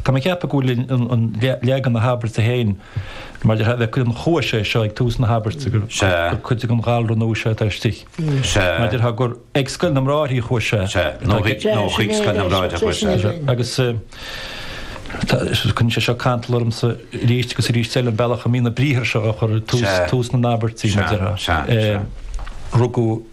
Tá mé ag ceapadh go bhfuil leagan na habairte féin mar a bheadh an chuaigh sé seo ag tús na habairte, gur cuid den ghalar nua seo atá istigh. Mar a déarfá, gur ag Scoil na mBráithre a chuaigh sé. Sea, nó chuig Scoil na mBráithre a chuaigh sé. Agus cuireann sé seo cantal ormsa arís agus arís eile, an bealach a mbíonn na briathra seo á chur ag tús na n-abairtí, mar a déarfá. Rugadh.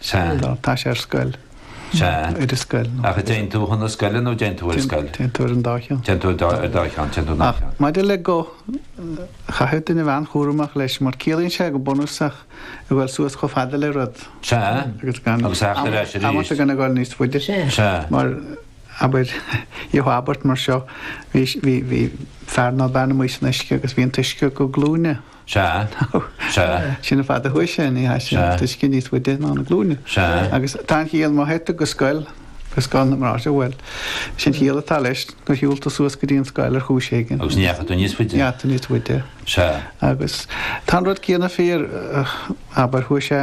Sea. Tá, tá sé ar scoil. Sea. Ar a scoil. Ach an dtéann tú chun na scoile nó dtéann tú ar scoil? Téann tú ar an dá cheann. Téann tú ar dá cheann, téann tú ar dá cheann. Ach maidir le go, chaithfeadh duine a bheith an-chúramach leis mar ciallaíonn sé go bunúsach a ghoil suas chomh fada le rud. Sea. Agus gan. Agus theacht ar ais arís. Amanta gan a ghoil níos faide. Sea. Sea. Mar abair an abairt mar seo bhí bhí bhí fear nó bean amuigh san uisce agus bhí an t-uisce go glúine. Sea. Sea. Sin an fad a chuaigh sé, ní hea sin, Sea. an t-uisce níos faide ná na glúine. Sea. Agus tá an chiall má chuaigh tú go scoil, go Scoil na mBráithre, bhuel, sin an chiall atá leis, gur shiúil tú suas go dtí an scoil ar chúis éigin. Agus ní dheachaigh tú níos faide. Ní dheachaigh tú níos faide. Sea. Agus tá an rud céanna fíor, abair, chuaigh sé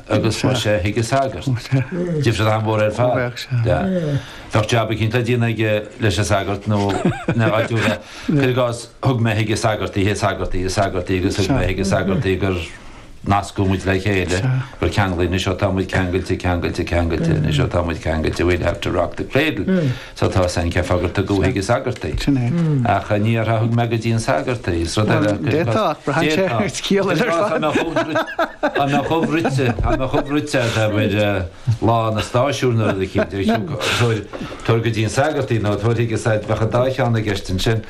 agus chuaigh sé chuig an sagart. Difríocht mhór ar fad. Bheadh jab eicínt le déanamh aige leis an sagart nó ina áitiúla. Cuir i gcás, thug mé chuig an sagart í, an sagart í, an sagart í agus thug mé chuig an sagart í gur nascadh muid le chéile, gur ceanglaíodh, anois seo tá muid ceangailte, ceangailte, ceangailte, anois seo tá muid ceangailte, we'll have to rock the cradle. Sea, tá sé ag fógairt gur thug chuig an sagart í. Sin é. Ach ní déarfá thug mé go dtí an sagart í. Is rud eile a. D'fhéadfá, ach braitheann sé ar chiall eile ar fad. Tá mé chomh bruite, tá mé chomh bruite, tá mé chomh bruite ar uimhir lá na stáisiún nó rud eicínt. Tabhair go dtí an sagart í nó tabharfaidh said, bheadh an dá cheann i gceist ansin.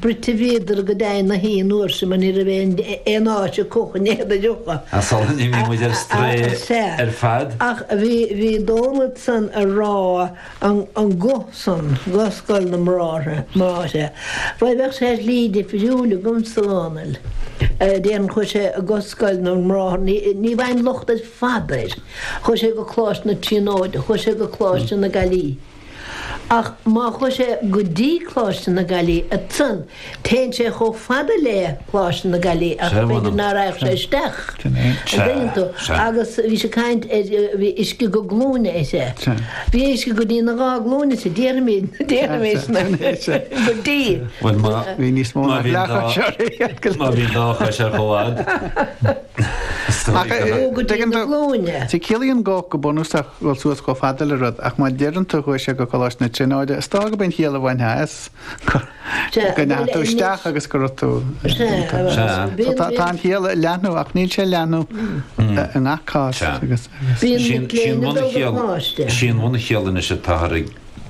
bruite bhíodar go deimhin agus an uair sin mar ní raibh aon aon áit a gcaithfí iad a dumpáil. Ach sula n-imí muid ar strae ar fad? Ach bhí bhí Dónall ansan á rá an an go san, go Scoil na mBráithre, mBráithre. Bhuel bheadh sé slí difriúil agamsa a Dhónaill. Déarfainn chuaigh sé go Scoil na mBráithre ní ní bhfaighim locht ar fad air. Chuaigh sé go Coláiste na Tríonóide, chuaigh sé go Coláiste na Gaillimhe. Ach má chuaigh sé go dtí Coláiste na Gaillimhe ansan, téann sé chomh fada le Coláiste na Gaillimhe ach b'fhéidir ná raghadh sé isteach. Sin é. An dtuigeann tú? Sea. Agus bhí sé ag caint ar, bhí uisce go glúine aige. Sea. Bhí uisce go dtí na dhá glúine aige, déarfaimid, déarfaimis mar sin, go dtí. Bhuel má, má bhí an dá, má bhí an dá chois ar comhfhad. Ach go dtí na glúine. Sea, ciallaíonn go, go bunúsach, dul suas chomh fada le rud, ach má deireann tú, Chuaigh sé go Coláiste na Tríonóide, is dócha gurb é an chiall a bhainfeá as go ndeachaigh tú isteach agus go raibh tú ann. Sea. Tá an chiall ag leathnú, ach níl sé ag leathnú i ngach cás. Sin, bhuel, an chiall anois atá i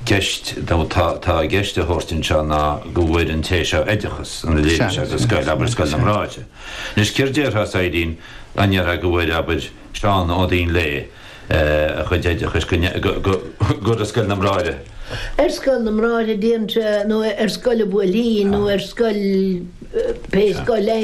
gceist, nó atá i gceist a thabhairt anseo ná go bhfuair an té seo oideachas, ann, oideachas scoile, abair, Scoil na mBráithre, Anois céard déarfá, a Shaidhbhín, an ndéarfá go bhfuair, abair, Seán Ó Maoinléigh a chuid oideachais go, go, go, go Scoil na mBráithre? Ar Scoil na mBráithre, déarfainn, nó ar scoil an Bhuailtín, nó ar scoil, pé scoil é.